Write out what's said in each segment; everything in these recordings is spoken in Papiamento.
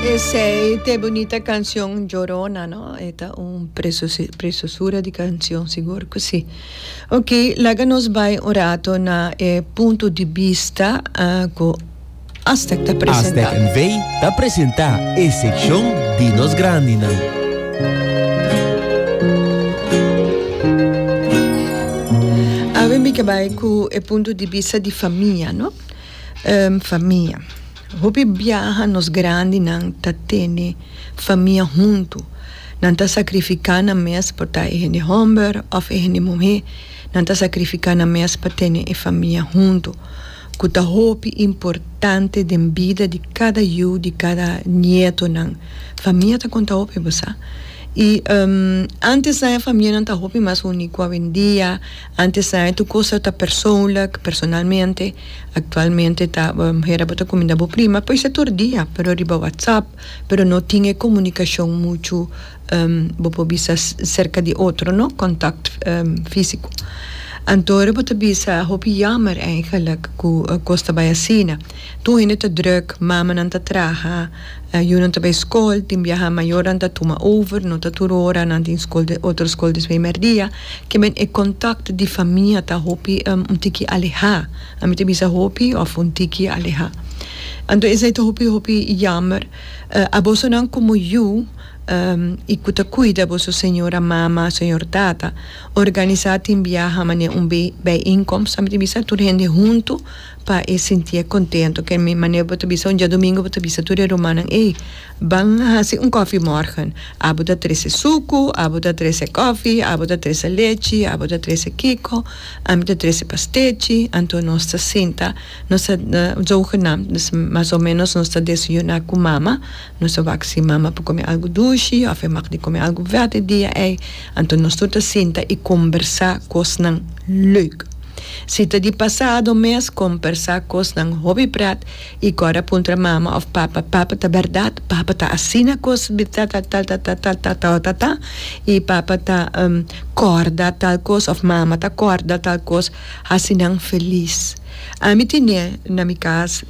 Esey te bunita cancion Llorona no? E ta un preciosura di cancion sigur cu si. Ok laga nos bay un rato na e punto di bista cu Aztec ta presenta. Aztec NV ta presenta e seccion di nos grandinan. Awe mi ke bay cu e punto di bista di famia no. Famia. Hopi biaha nos grandinan ta tene famia huntu. Nan ta sakrifiká nan mes por ta e hende hòmber òf e hende muhé. Nan ta sakrifiká nan mes pa tene e famia huntu ku ta hopi importante den bida di kada yu, di kada nietonan. Famia ta konta hopi, bo sa? I antes nan e famianan ta hopi mas uní ku awendia. Antes a tur cosa ta persoonlijk, personalmente, actualmente ta bo muher abo ta cuminda bo prima, por esa tur dia, pero riba WhatsApp, pero no tin e comunicacion mucho bo por bisa cerca di otro no, contact fisico. Anto ora bo ta bisa hopi jammer eigenlijk cu cos ta bay asina, tur hende ta druk, mamanan ta traha, Yu nan ta bay skol tin biaha mayornan ta tuma over no ta tur ora nan tin skol de otro skol despues di merdia kimen e contact di famia ta hopi un tiki aleha a mi ta bisa hopi of un tiki aleha anto esey ta hopi hopi yamer a boso nan como yu y cu ta cuida boso señora mama señor tata organisa tin biaha mane un bay inkomst a mi ta bisa tur hende hunto. Pa e sintié kontento. Ke mi manera bo ta bisa un diadomingo bo ta bisa tur e rumannan ey ban hasi un kòfi mòrgen abo ta trese suku abo ta trese kòfi abo ta trese lechi abo ta trese kiko ami ta trese pastechi anto nos ta sinta nos ta zogenaam mas o menos nos ta desayuna ku mama nos ta wak si mama por kome algu dushi òf e mag di kome algu vèt e dia ey anto nos tur ta sinta i kombersá kosnan lèuk. Si ta di pasado mes kompersá kosnan hopi prat i kòrda puntra mama òf papa, Papa, ta bèrdat papa ta asina kos di ta ta tal ta ta tal ta ta ta ta i papa ta kòrda tal kos òf mama ta kòrda tal kos? Hasi nan felis. Ami tine na mi kas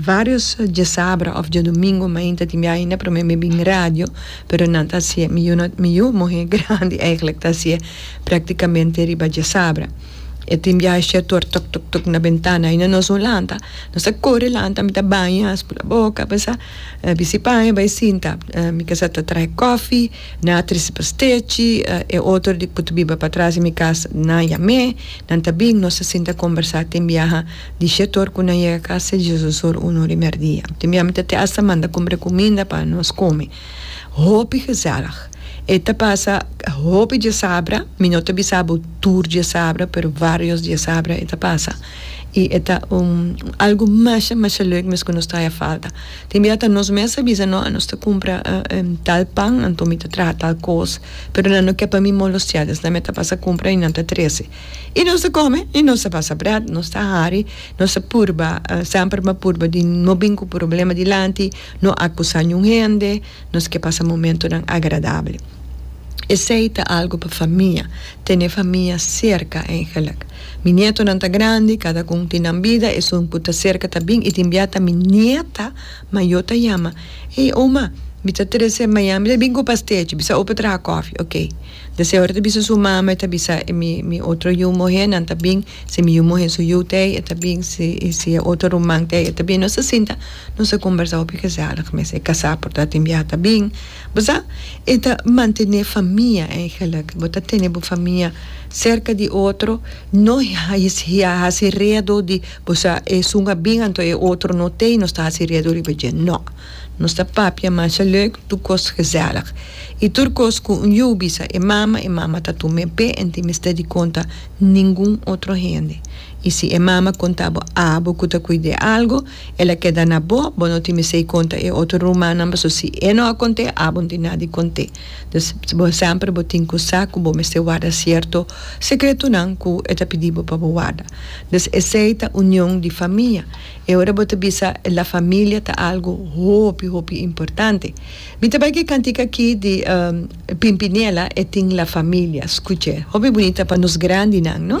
vários djesabra òf djedomingu mainta tin biaha ainda promé mi bin radio, pero nan ta hasié mi yu no mi yu muhé grandi èiglek ta hasié praktikamente riba djesabra. e tin biaha e shertor tok tok tok na bentana y na nos un lanta nos a kore lanta mi ta baña spula boka basa bisi paña bai sinta mi kasa ta trahe kofi nan a trese pa stechi e otro di ku ta biba patras di mi kas nan a yam'e nan ta bin nos a sinta kombersa tin biaha di shertor ku nan yega kas sejiso sur uno di mèrdia tin biaha mi ta te asta manda kumbre kuminda pa nos kome Hopi gezellig. E ta pasa hopi diasabra, mi no ta bisa bo tur diasabra, pero varios diasabra e ta pasa. I e ta un algu masha masha leuk mes ku nos ta haña falta. Tin bia ta nos mes a bisa no a nos ta kumpra tal pan anto mi ta traha tal kos, pero nan no ke pa mi molostiá esnan mi ta pasa kumpra i nan ta trese. I nos ta kome i nos ta pasa brat, nos ta hari, nos ta purba, semper mi a purba di no bin ku problema dilanti. No akusá niun hende, nos ke pasa momentunan agradabel. Esei ta algu pa famia, tene famia serka eigenlik. Mi nietonan ta grandi, kada ku un tin nan bida, esun ku ta serka ta bin i tin bia ta mi nieta mayó ta yama, Ey, oma, mi ta trese Miami, mi ta bin ku pastechi, mi sa ope traha kòfi, ok. De señor ta bisa su mama e ta bisa e mi mi otro yu muhé nan ta bin si mi yu muhé su yu ta ei e ta bin si i si e otro ruman ta ei e ta bin nos ta sinta nos ta kombersá hopi gezellig mes e kasá por ta tin biaha ta bin bo sa e ta mantené famia eigenlik bo ta tene bo famia serka di otro no a hasi redo di bo sa esun a bin anto e otro no ta ei nos ta hasi redo riba dje no. Nos ta papia masha leuk tur kos gezellig i tur kos ku un yu bisa e mama, e mama ta tum'é p'e en tin mester di konta ningun otro hende. I si e mama konta bo abo ku ta kuid'é algu, el a keda na bo, bo no tin mester di konta e otro rumannan paso si e no a kont'é abo no tin nada di kont'é. Dus bo semper bo tin ku sa ku bo mester warda sierto sekretonan ku e ta pidi bo pa bo warda. Dus esei ta union di famia. E ora bo ta bisa La Familia ta algu hopi, hopi importante. Mi ta bai ku e kantika aki di Pimpinela e tin La Familia. Skuch'é. Hopi bunita pa nos grandinan, no?